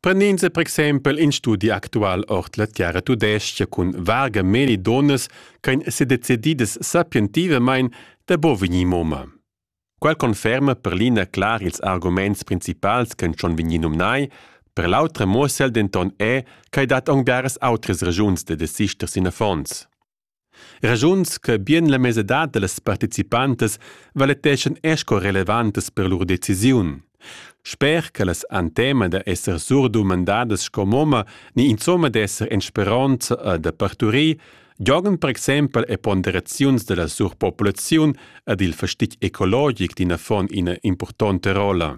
Prenins e per exempel in studi actual ord la terra tudestga cun varga meli donas ch'ein sedecididas sapientivamein da bo vegnir moma. Quel conferma per l'ina clar ils arguments principals che schon vegnir numnai, per l'autra muossel denton è ch'ei dat aunc biaras outras regiuns da desister sin affons. Raschuns che bien la mesadad da las participantas valeteschan er sco relevantas per lur decisiun. Sper che las han tema da esser surdumandadas sco momma ni insomma d'esser en speronza e da parturir, giogan per exempel e ponderaziuns da la surpopulaziun ed il fastig ecologic d'in affon ina impurtonta rolla.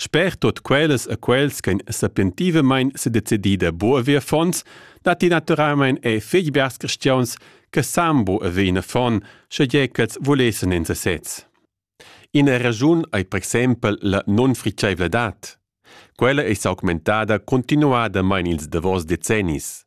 Sper tut quellas e quels ch'ein sapientivamein sedecidi da buca ver affons, datti naturalmein er fetg biars cristiauns che san bu haver in affon, schegie ch'els vulessen en sesez. Ina raschun ei per exempel la nunfritscheivladad. Quella ei s'augmentada continuadamein ils davos decennis.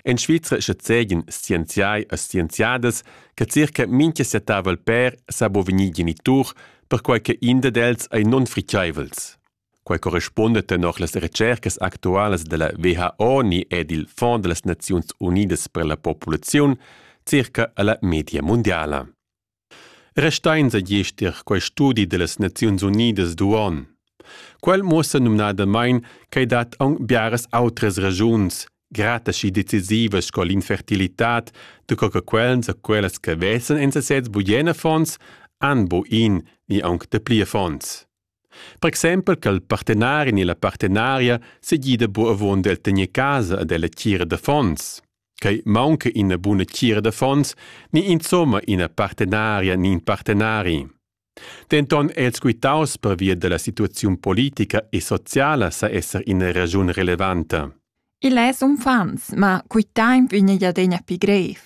En Svizra schazegian scienziai e scienziadas che circa mintga settavel pèr sa bo vegnir genitur, perquai che in dad els ei nunfriceivels. Quai correspunda tenor las recercas actualas della WHO ni ed il Fonds delle Nazioni Unidas per la popolazione circa alla media mondiala. Restains egiester quai studi dellas Naziuns Unidas d'uonn. Quel muossa numnadamain ch'ei dat aunc biaras outras regiuns grataschi decisivas sco l'infertilitad da co che quels e quellas che vesan en sesez bugen affons han bu in ni aunc dapli affons. Per exempel che il partenari ni la partenaria segida bu avon d'el tegner casa ad ella tgira d'affons. Quei maunca ina buna tgira d'affons ni insomma ina partenaria ni in partenari. Denton è els quitaus pervia della situaziun politica e sociala sa esser ina ragiun relevanta. Il es uffants, ma quitaim vegna adegna pi grev.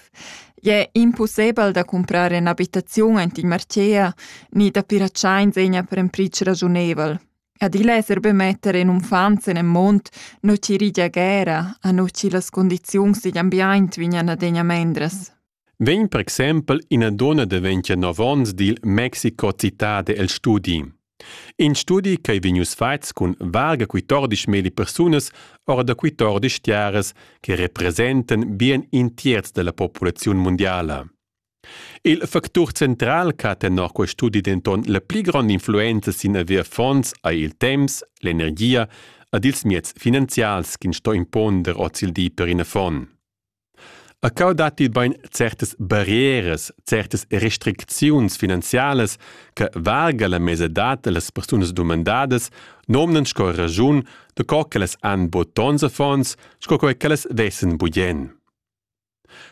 Ie impossibel da comprar un'abitazione int in Marcea ni da piracciain segna per un pric ragiunevel. Adilla esser be metter in unfant sen en mund, nu chi rigia guera, a nu chi las condiziuns digl ambiaint vignan adegna mendras. Vegn per exempel ina donna daventia nov onns dil Mexico Cittade el studi. In studi ch'ei vegnius fatgs cun varga 14 meli persunas ora da 14 tiaras che representen bien in tierz della populaziun mundiala. Il factur central ch'ha tenor quest studi denton la pli grond'influenza sin haver fonds ei il temps, l'energia ed ils mieds finanzials ch'ins sto imponder ozildi per in affon. A cau datti bein certas barrieras, certas restricziuns finanzialas che valga la mesadad dallas persunas dumandadas nomnan sco raschun da co ch'ellas han buca tons affons sco quei ch'ellas vessen bugen.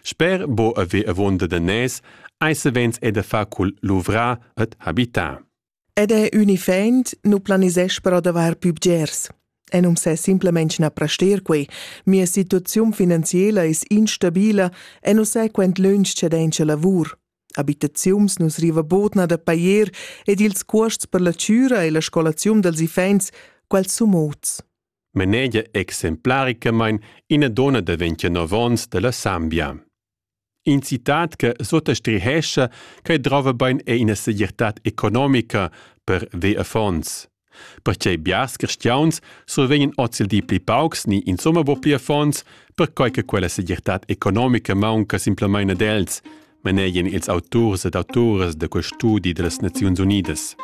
Sper bo haver avonda da nez ei savens è da far cul luvrar ed habitar. Ed è unifaint nu planisesch però d'avair pü bgers. E non s'è simplemente na prester quei. Mia situaziun finanziela es instabila e non sai quant lunsch c'è dencha lavur. Abitaziuns nus riva bodna da pajer ed ils cuosts per la chüra e la scolaziun dels iffaints, quels sun mots. Manegia exemplaricamain ina donna da vintinov onns da la Sambia. In citat che suttastrihescha che drova bain è ina segirtad economica per ve affons. Perche biars cristiauns survegnan ozildi pli paucs ni insomma bo pli affons, perquai che quella segirtad economica maunca simplamain ad els, manegian ils auturs ed autoras da quel studi dellas Naziuns Unidas.